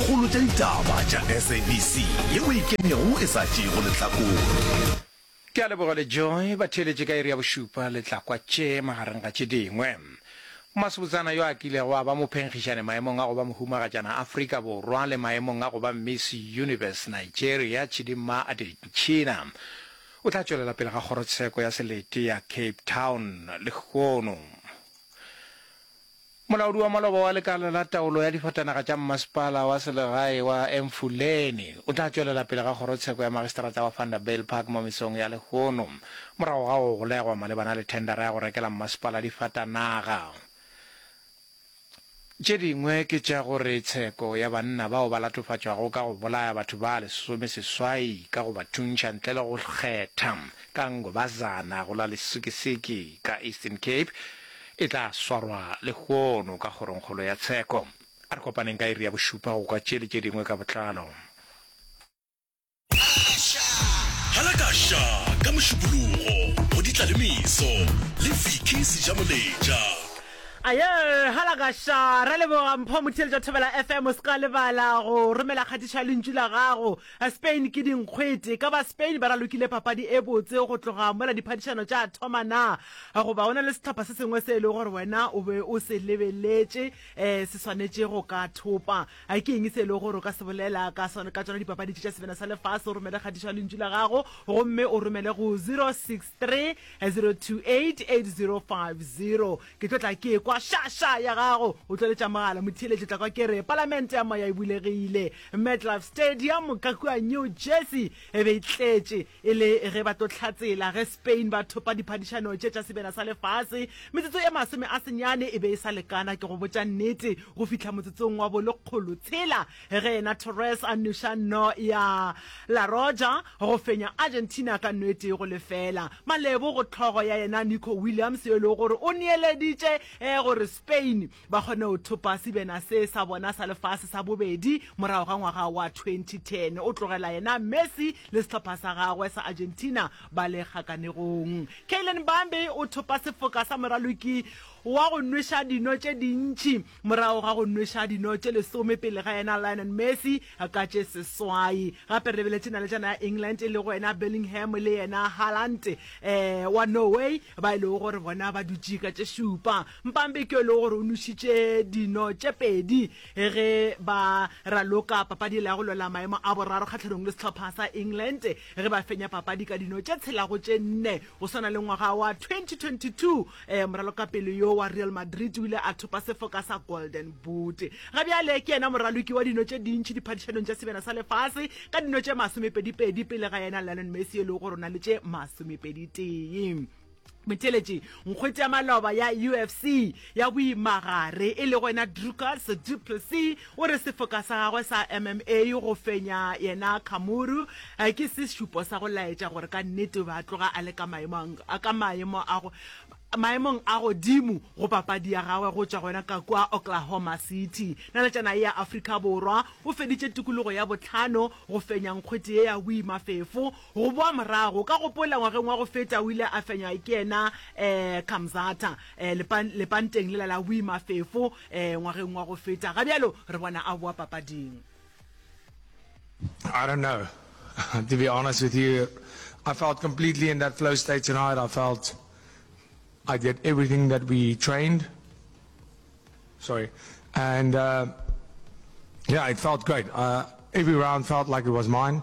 kgolo tša ditaba tša SABC yeo e ikemego e sa tšeego lehlakore. Ke a leboga le Joy ba theeletše ka iri ya bošupa le tla kwa tše magareng ga tše dingwe. Mmasebotsana yo a kilego a ba mophenkgišane maemong a go ba mohumagatšana Afrika Borwa le maemong a go ba Miss Universe Nigeria Chidimma Adetshina o tla tšwelela pele ga kgorotsheko ya selete ya Cape Town lehono. Molaodi wa maloba wa lekala la taolo ya difatanaga tša mmasepala wa selegae wa Emfuleni o tla tšwelela pele ga kgorotsheko ya magistrata wa Vanderbijlpark mo mesong ya lehono morago ga go golegwa malebana le thendara ya go rekela mmasepala difatanaga tše dingwe ke tša gore tsheko ya banna bao ba latofatšwago ka go bolaya batho ba lesome seswai ka go ba thuntšha ntle le go kgetha ka Ngobazana go la Lesikisiki ka Eastern Cape E tla swarwa lehono ka Kgorongkgolo ya Tsheko. A re kopaneng ka iri ya bošupa go kwa tše le tše dingwe ka botlalo. Halakasha ka Mošupologo go di tla le meso le Vicky Sejamoletša. Ayo, Halakasha, ra leboga Mpho Motheeletša Thobela FM, o se ka lebala go romela kgatišo ya lentšu la gago. Spain ke dinkgwete, e ka ba Spain ba ralokile papadi e botse go tloga mola diphadišano tša thoma na? A Goba go na le sehlopha se sengwe se e le gore wena o be o se lebeletše um se swanetše go ka thopa? A Ke eng se e le gore o ka se bolela ka sona ka tsona dipapadi tše tša Sebjana sa Lefase? O romele kgatišo ya lentšu la gago gomme o romele go 0630288050. Ke tlo tla ke ekwa xa-xa ya gago o tloletša mogala. Motheeletši o tla kwa ke re, Palamente ya Moya e bulegile. Metlife Stadium ka kua New Jersey e be e tletše. E le ge ba tlo hlatsela ge Spain ba thopa diphadišano tše tša sebena sa lefase, metsotso e masome a senyane e be e sa lekana, ke go botša nnete, go fihla motsotsong wa bolekgolo tshela ge yena Torres a nuša no ya La Roja go fenya Argentina ka no e tee go lefela. Malebo go hlogo ya yena Nico Williams yo e lego gore o neeleditše gore Spain ba kgone go thopa sebena se sa bona sa lefase sa bobedi morago ga ngwaga wa 2010. O tlogela yena Messi le sehlopha sa gagwe sa Argentina ba le kgakanegong. Kylian Mbappe o thopa sefoka sa moraloki wa go nweša dino tše dintši morago ga go nweša dino tše lesome pele ga yena Lionel Messi ka tše seswai. Gape re lebeletše nalejana ya England e lego yena Bellingham le yena Haaland um wa Norway ba e lego gore bona ba dutše ka tše šupa. Mpambe ke yo e lego gore o nošitše dino tše pedi ge ba raloka papadi ela ya go lwela maemo a boraro kgahlanong le sehlopha sa England ge ba fenya papadi ka dino tše tshela go tše nne. Go swana le ngwaga wa 2022, um moralokapele yo wa Real Madrid o ile a thopa sefoka sa Golden Boot. Ga bjale ke yena moraloki wa dino tše dintši diphadišanong tša Sebjana sa Lefase ka dino tše masomepedipedi pele ga yena Lionel Messi yo e lego gore o na le tše masomepeditee. Motheeletši nkgwete ya maloba ya UFC ya boimagare e lego yena Dricus du Plessis o re sefoka sa gagwe sa MMA go fenya yena Khamuru ke se šupo sa go laetša gore ka nnete o be a tloga a le ka maemo a go maemong a godimo go papadi ya gagwe go tšwa gona ka kwa Oklahoma City. Naletšana ye ya Afrika Borwa o feditše tikologo ya botlhano go fenya nkgwete ye ya boimafefo Go boa morago, ka gopola ngwageng wa go feta o ile a fenywa ke yena Kamzata lepanteng lela la boimafefo ngwageng wa go feta, ga bjalo re bona a boa papading. I don't know, to be honest with you, I felt completely in that flow state tonight, I felt I did everything that we trained, sorry, and yeah, it felt great, every round felt like it was mine.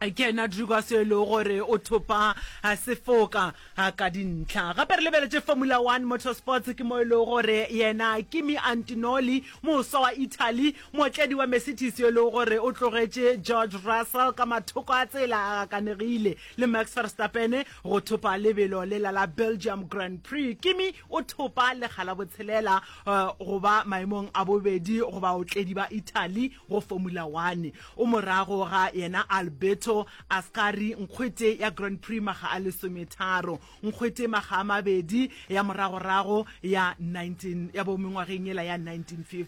Ke yena Drewgas yo e lego gore o thopa sefoka ka dintlha. Gape re lebeletše Formula One Motorsports ke mo e lego gore yena Kimi Antinoli, moswa wa Italy, mootledi wa Mercedes yo e lego gore o tlogetše George Russell ka mathoko a tsela a gakanegile, le Max Verstappen go thopa lebelo lela la Belgium Grand Prix. Kimi o thopa lekga la botshelela go ba maemong a bobedi go baotledi ba Italy go Formula One. O morago ga yena Alberto Ascari, nkgwete ya Grand Prix makga a lesometharo, nkgwete makga a mabedi ya moragorago ya 19 ya bo mengwageng yela ya 1950.